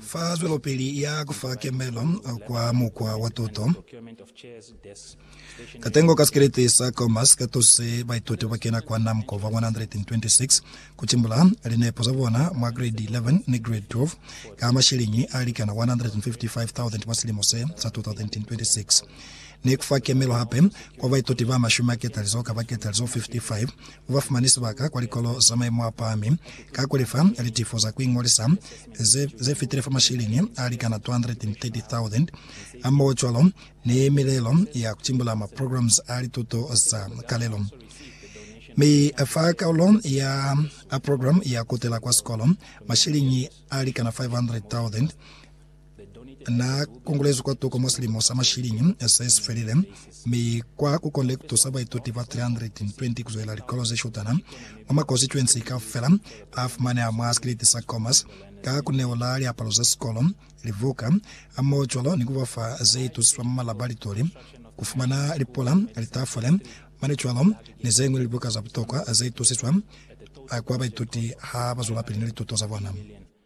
Fa zwelopili ya kufa kemelo kwa mukwa wa tuto, katengo ka sikelete sa Comas ka tuse baituti ba kena kwa NAMCO ba 126 ku timbula linepo za bona mwa Grade 11 ni Grade 12 ka masheleñi a likana 155,000 mwa silimo se sa 2026, ni kufa kemelo hape kwa baituti ba mashumi a ketalizoka ba ketalizo 55 ba fumani sibaka kwa likolo za maimo a pahami ka ku lefa litifo za ku iñolisa ze, ze fitile fa masheleni a likana 230,000 hamoho cwalo ni milelo ya ku timbula ma programs a lituto za kalelo. Mi fa kaulo ya a program ya kutela kwa sikolo, masheleni a likana 500,000 Na kongolezwi kwa toko mwa silimo sa mashilingi se si felile, mi kwa ku konde ku tusa baituti ba 320 ku zwelela likolo ze shutana mwa makonsituensi kaufela a fumaneha mwa sikiliti sa Khomas ka ku neola liapalo za sikolo, libuka, hamoho cwalo ni ku ba fa ze itusiswa mwa malabaritory, ku fumana lipula, litafule, mane cwalo ni ze ñwi libuka za butokwa ze itusiswa kwa baituti ha ba zwelapili ni lituto za bona.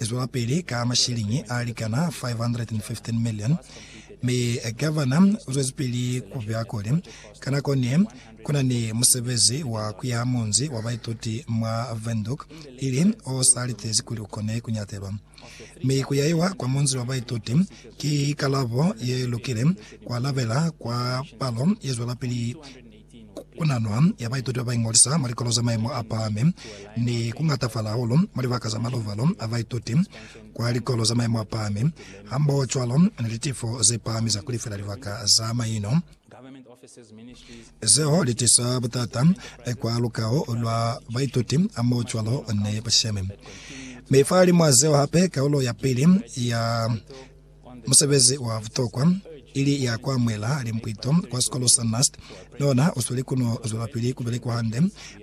lizwelapili ka mashiliñi a likana 515 milioni, mi gavana uzwezipili kubuya kuli, ka nako ne kuna ni musebezi wa kuyaha munzi wa baituti mwa Windhoek, ili o sa litezi kuli ukone kunyatelwa. Mi kuyaiwa kwa munzi wa baituti ki kalabo ye lukile, kwa labela kwa palo yezwelapili Ku na nwa ya baituti ba ba iñolisa mwa likolo za maimo a pahami ni ku ngatafala hahulu mwa libaka za maluvalo a baituti kwa likolo za maimo a pahami, hambohocwalo ni litifo ze pahami za ku lifela libaka za maino. Zeo li tisa butata kwa lukaho lwa baituti hambohocwalo ni bashemi. Mi fahalimwaa zeo hape, kaulo ya pili ya Musebezi wa butokwa, ili ya ku amuhela limpwito kwa sikolo sa NUST, ni ona u sweli ku no zwelapili ku belekwa hande,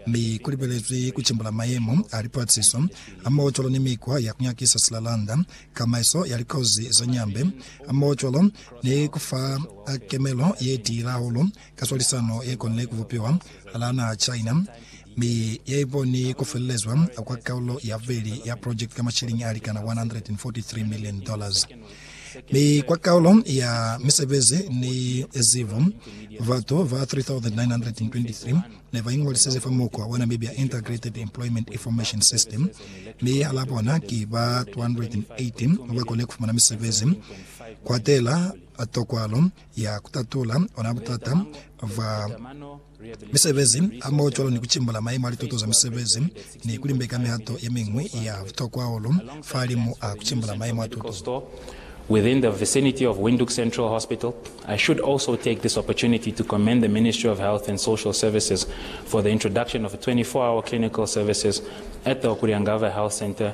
mi ku libelezwi ku cimbula mayemo a lipaatisiso hamoho cwalo ni mikwa ya ku nyakisa silalanda, kamaiso ya likozi za nyambe, hamoho cwalo ni ku fa kemelo ye tiile hahulu ka swalisano ye konile ku bupiwa hala naha China Mi ya ikoni ku felelezwa kwa kaulo ya bubeli ya project ka mashiliñi a likana 143 million dollars. Mi kwa kaulo ya misebezi ni zibo, batu ba 3,923 ne ba ingolisize fa mukwa wa Namibia Integrated Employment Information System, mi hala bona ki ba 280 ba kone ku fumana misebezi, kuatela tokwalo ya ku tatula ona butata bwa misebezi hamoho cwalo ni ku cimbula maimo a lituto za misebezi ni ku limbeka mihato ye miñwi ya butokwa hahulu fahalimu a ku cimbula maimo a tuto. within the vicinity of Windhoek Central Hospital, I should also take this opportunity to commend the Ministry of Health and Social Services for the introduction of 24-hour clinical services at the Okuriangava Health Centre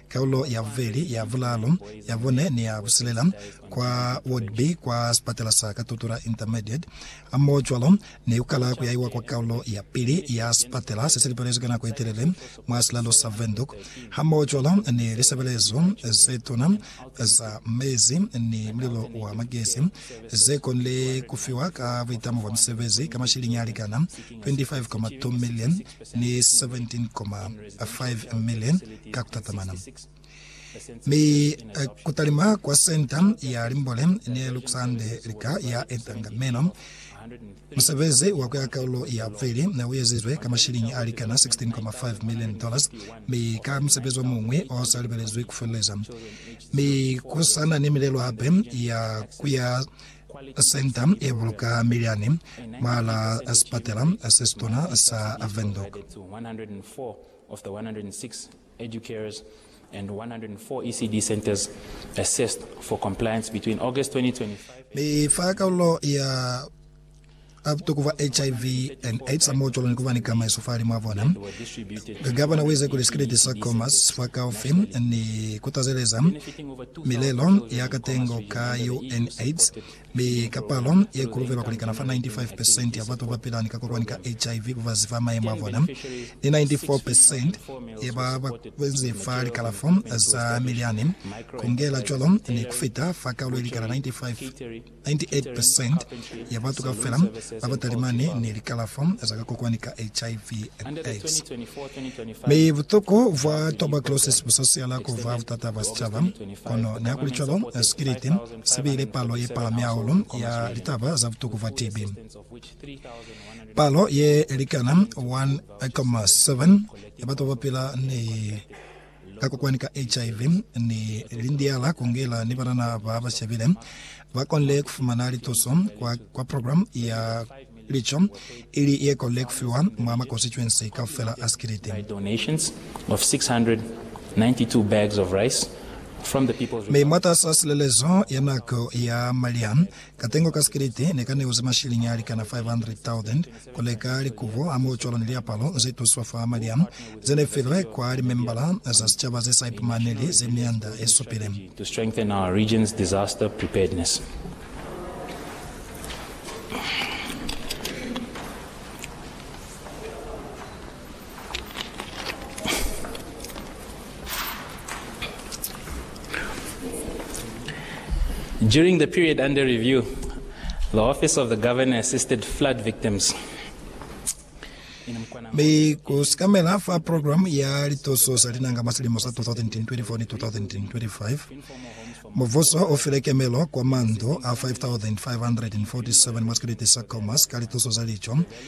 Kaulo ya bubeli, ya bulaalu, ya bune ni ya busilela kwa Ward B kwa sipatela sa Katutura Intermediate, hamohocwalo ni kukala kuyaiwa kwa kaulo ya pili ya sipatela sesilipelezwi ka nako yetelele mwa silalo sa Windhoek, hamohocwalo ni lisebelezo zetuna za mezi ni mulilo wa magesi, zekonile kufiwa ka buitamo bwa misebezi ka mashiliñi alikana 25.2 million. ni 17.5 million ka kutatamana. Mi kutalima kwa Senta ya Limbole ne lukusande lika ya etanga meno. Musebezi wa kuya kaulo ya bubeli ne uezizwe ka mashilingi a likana 16.5 million dollars, mi ka musebezi omuñwi osa libelezwi kufeleleza. Mi kusana ni milelo hape ya kuya Senta ye buluka miliani mwahal'a sipatela se situna sa Windhoek. A Ku tukuba HIV and AIDS hamootolo ni kuba ni kamaiso fahali mwa bona. Ka Gavana uize kuli sikiliti sa Comas fakaufi ni kutazeleza milelo ya katengo ka UNAIDS, mi ka palo ye kuluvelwa kulikana fa 95 percent ya batu babapila ni kakokwani ka HIV babazi fa mayemo a bona, ni 94 percent ya ba bazi fa likalafo za milyani, kungela cwalo ni kufita fa kaulo ilikana 95. 98 percent ya batu kaufela ba ba talimani ni likalafo za ka kokwani ka HIV and AIDS. Mi butoko bwa tuberculosis bu sa siyala ku ba butata bwa sicaba, kono nihakulicwalo, sikiliti si bile palo ye palami hahulu ya litaba za butoko bwa TB. Palo ye likana 1,7 ya batu ba ba pila ni ka kokwani ka HIV ni lindiala kungela ni banana ba ba shabile ba konle kufumana lituso kwa, kwa program ya lico ili ye konle kufiwa mwa ma constituency kaufela a Sikiliti. Mi mwatas'a silelezo ya nako ya maliha, katengo ka Sikiliti ne ka neuze mashiliñi alikana 500,000 Ku leka likubo hamoho cwalo ni liapalo ze tuswa fa malya ze ne filwe kwa limembala za sicaba ze sa ipumaneli ze mianda ye supile. During the period under review, the Office of the Governor assisted flood victims. Be ku sikamela fa program ya lituso sa linanga mwa silimo sa 2024 ni 2025. Muvuso o file kemelo kwa mandu a 5,547 mwa sikiliti sa Khomas ka lituso za lico